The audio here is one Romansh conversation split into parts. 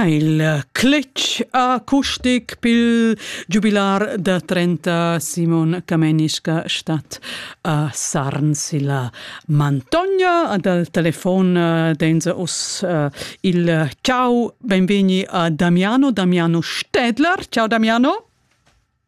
Il cletg acustic pil giubilar da 30 Simon Camenischka stat a Sarns illa Mantogna. Dal telefon eh, denza us eh, il ciao, benvegni a Damiano, Damiano Stedler. Ciao Damiano.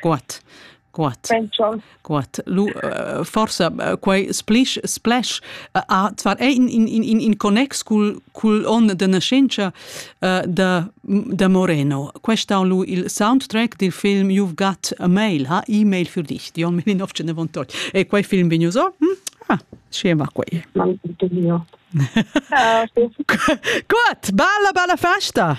Guat, guat, guat. Lu forsa quei splisch, splash ha zwar è in, in, in, in connex cul, cul onn de nascenza uh, da, da Moreno. Questa on lu il soundtrack dil film You've Got a Mail, ha e-mail für dich, di on 1998. E quei film vegnu so? Hm? Ah, scema quei. Guat, bella, bella festa!